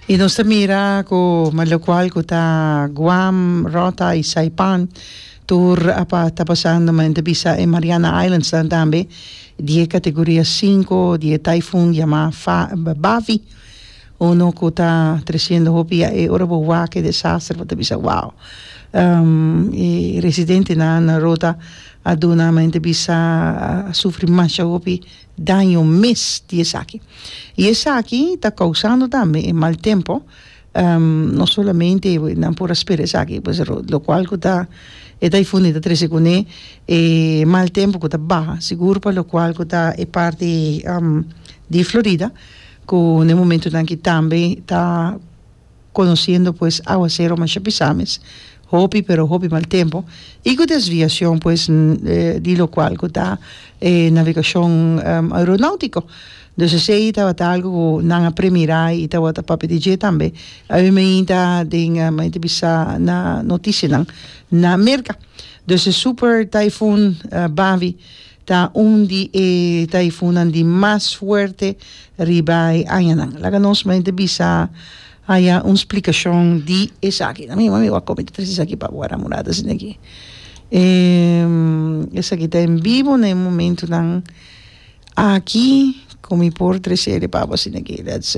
Y nos ta mira cu ma locual cu ta Guam, Rota y Saipan tur a pa ta pasando ma enta bisa e Mariana Islands nan tambe di e categoria cinco di e typhoon yama Fa, Bavi uno cu ta treciendo hopi ya e ora bo wak e desastre bo ta bisa wow e residente nan na Rota a duna ma enta bisa a sufri masha hopi. daño mes di esaki. I esaki ta kousando tambe e mal tempo, no solamente nan por a spera esaki, pues lokual ku ta e taifuni ta trese kuné e mal tempo ku ta baha, sigur pa lokual ku ta e parti di Florida, ku na e momentunan aki tambe ta. conociendo pues aguacero masha pisa mes hopi pero hopi mal tempo y cu desviacion pues di lo cual cu ta e navegacion aeronautico dus esey tabata algo cu nan a premira y tabata papia di dje tambe awe mainta den mayo ta bisa na noticianan na Merca dus e super typhoon Bavi Ta un di e taifunnan di mas fuerte riba e añanan. Laga nos mente bisa haya un splikashon di esaki. Ami mi wak komente tres esaki pa wara murada asina aki. Esaki ta en bibo na e momentunan aki ku mi por trese e repabo asina aki. That's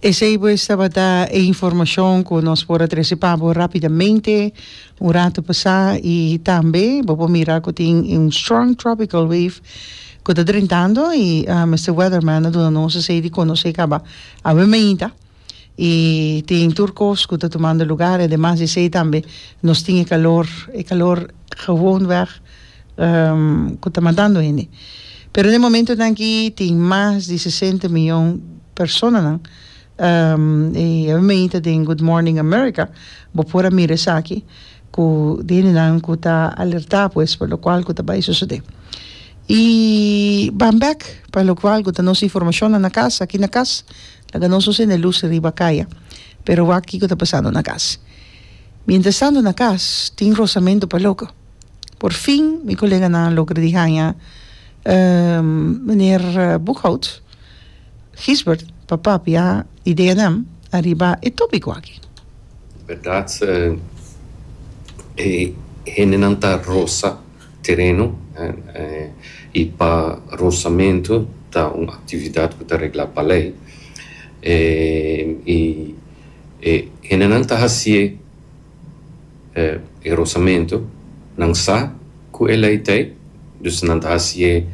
Esei pues tabata e informacion cu nos por a trece pa bo rapidamente un rato pasa y tambe bo por mira cu tin un strong tropical wave cu ta drentando y Mister Weatherman a duna nos esei di conoce caba awe mainta y tin tur cos cu ta tumando lugar y demas di esei tambe nos tin e calor e calor Gewoonweg cu ta matando hende. Pero den e momentonan aki tin mas di sesenta miyon personanan. E awe meita den Good Morning America bo por a mira esaki cu di hendenan cu ta alerta pues pa locual cu ta bay sucede. Y ban bek pa locual cu ta nos informacionnan na cas, aki na cas laga nos nos hende lus riba caya pero wak kico ta pasando na cas. Mientras tanto na cas tin rosamento pa loco. Por fin mi coleganan a logra di hanja meneer Boekhout, Gisbert, pa papia ideanan ariba e topico aki. Berdad e hendenan ta rosa tereno y pa rosamento ta un actividad cu ta regla pa ley y E hendenan ta hasié e rosamentu, nan sa ku e lei t'ei, dus nan ta hasié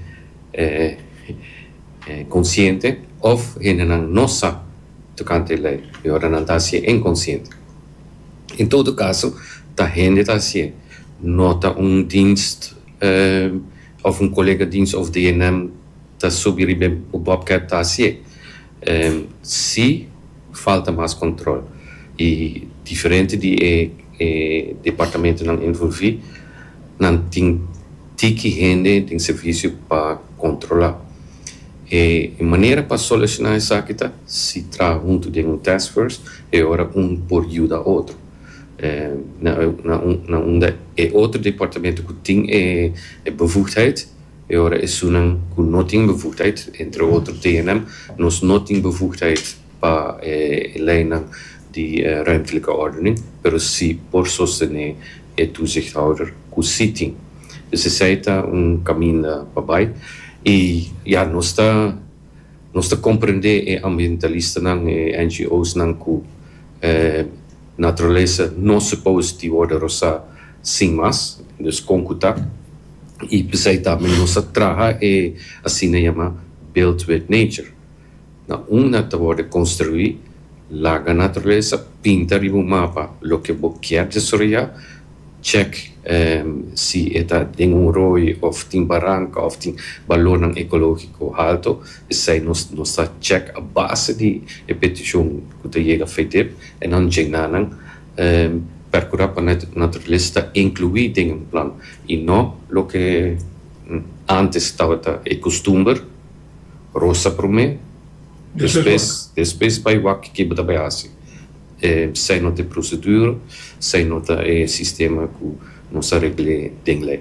konsiente òf hendenan no sa tokante e lei i ora nan ta hasié inkonsiente. Den todo kaso ta hende ta hasié, no ta un dienst òf un kolega dienst òf DNM ta subi riba e bobcat ta hasié. Sí, falta mas control y diferente di e departamentonan envolvi, nan tin tiki hende den servicio pa controla. E manera pa soluciona esaki ta si traha hunto den un task force e ora un por yuda otro na unda e otro departamento cu tin e bevoegdheid, E ora esunnan ku no tin bevoegdheid, entre otro dingenan, nos no tin bevoegdheid pa e leynan di ruimtelijke ordening, pero sí por sostené e toezichthouder ku sí tin. Dus esei ta un kaminda pa bai. I ya, nos ta nos ta komprendé e ambientalistanan, e NGOsnan ku e. Naturalesa no suppose di worda rosá sin mas, dus kon ku ta, i p'esei ta mi nos a traha e asina yama built with nature, na unda ta worde konstruí, laga naturalesa, pinta riba un mapa loke bo kier desoroyá, Check si e ta den un rooi of tin baranka of tin balornan ekologiko halto. Esei nos nos ta check a base di e petishon ku ta yega Fedip en nan djena nan perkura pa naturalesa ta inkluí den un plan i no loke antes tabata e kustumber, rosa promé, despues despues bai wak ke bo ta bai hasi. Esei no ta e prosedura, esei no ta e sistema ku nos a regl'é den lei.